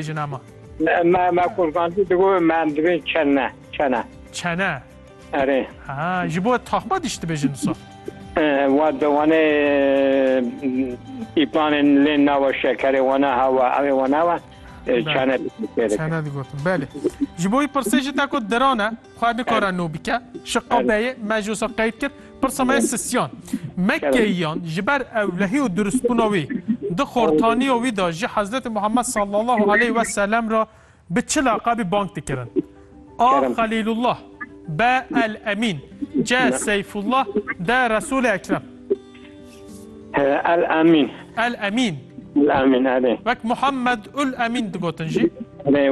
jina ma. Me me kurbanî digo me divê çene çene. Çene. Erê. Ha ji bo taxma dişt dibêjin wisa. Wa dewanê pîpanên lê nawa şekerê wana hawa evê wana wa çene. Çene digotin belê. Ji bo wî pirsê ji te ku diran e. Xwe nikare nû bike. Şiqo beyê me ji wisa qeyd kir. Pirsa me ye Sisyan. Me keyiyan ji ber ewlehî û dirustbûna wî di xortaniya wî de ji Hezretê Muhammed sallallahu aleyh we selem re bi çi laqebî bang dikirin? A. Xelîlullah B. El Emîn C. Seyfullah D. Resûlê Ekrem. El Emîn. El Emîn. El Emîn erê. Wek Muhammed ul Emîn digotin jî. Erê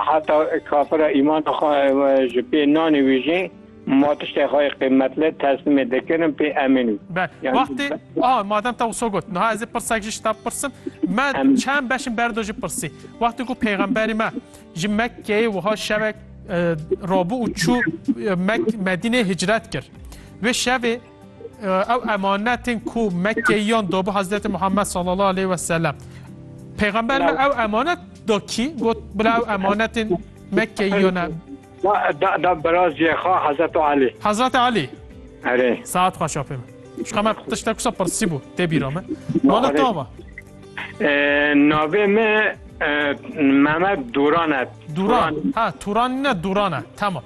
heta kafira îmana xwe ji pê nanê wî jî ma tiştê xwe yê qîmetli teslimê dikirin pê Emîn wî. Bel. Wextê aha madem te wisa got niha ez ê pirsek jî ji te bipirsim. Me çend beş in berdo jî pirsî. Wextê ku pêxemberê me ji Mekkeyê wiha şevek rabû û çû Medîneyê hicret kir. Wê şevê Ew emanetên ku Mekkeyiyan dabû Hezreti Muhammed sallallahu aleyhi ve sellem. Peygamber me ew emanet da kî got bila ew emanetên Mekkeyiyan e. Da da biraziyê xwe Hezreti Alî. Hezreti Alî. Erê. Saet xweş apê min. Şka me tiştek kusa pirsî bû tê bîra me. Mala tava. Navê me Mehmet Duran e. Duran. Ha Turan ne Duran e. Tamam.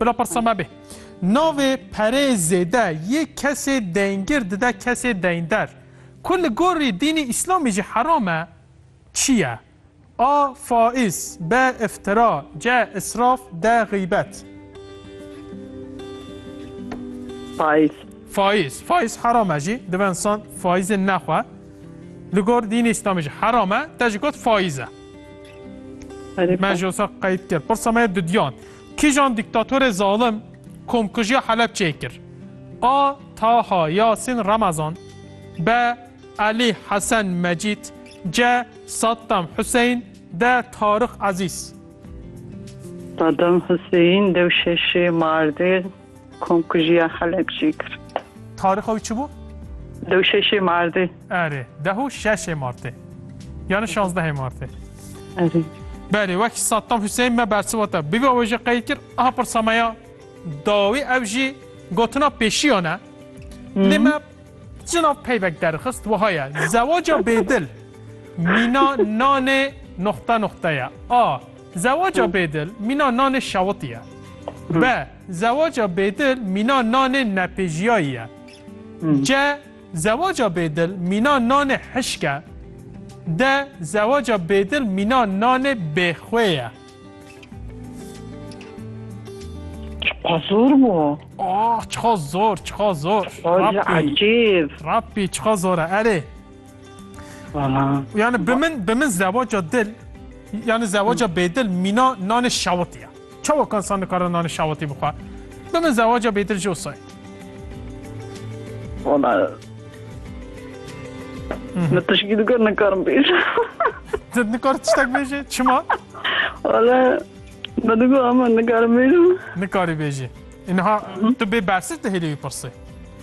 Bila pirsa me bê. Navê perê zêde yê kesê deyngir dide kesê deynderr. Ku li gorî dînê îslamî jî heram e, çi ye? A. Faiz B. Îftira C. Israf D. Xîbet Faiz. Faiz. Faiz heram e jî. Dibe insan faizê nexwe. Li gor dînê îslamî jî heram e, te jî got faiz e. Me jî wisa qeyd kir. Pirsa me ye dudiyan. Kîjan dîktatorê zalim komkujiya Helepçeyê kir? A. Taha Yasîn Remezan B. Elî Hesen Mecîd C. Saddam Huseyîn D. Tarix Ezîz. Sadam Huseyîn, Dewşeşê, Mardin. Komkujiya Helepçî kir. Tarixa wî çi bû? Deh û şeşê Martê. Erê, deh û şeşê Martê. Yani şazdehê Martê. Erê. Berê, wek Saddam Hüseyin me bersiva te. Bibe wê jî qey kir, aha pirsa me ya dawî ev jî gotina pêşiyan e. Lê me cina peybek derxist wiha ye. Zewaca bêdil mîna nanê nuxte nuxte ye. A. Zewaca bêdil mîna nanê şewitî ye. Be, Zewaca bêdil mîna nanê nepêjiyayî ye. Ce, Zewaca bêdil mîna nanê hişk e. De, Zewaca bêdil mîna nanê bêxwê ye. Çiqa zor bû. Oh, çiqa zor, çiqa zor. Xwedî ecêb. Rabbî çiqa zor e erê. Yani bi min bi min zewaca dil yani zewaca bêdil mîna nanê şawitî ye. Çawa kan san nikare nanê şawitî bixwe? Bi min zewaca bêdil jî wisa ye. Wala Min tişkî dikar nikarim bêj. Ti nikar tiştek bêjê? Çima? Wala me digo ama nikarim bêjim. Nikarî bêjî. Inha tu bê bersîv dihêlî wî pirsî.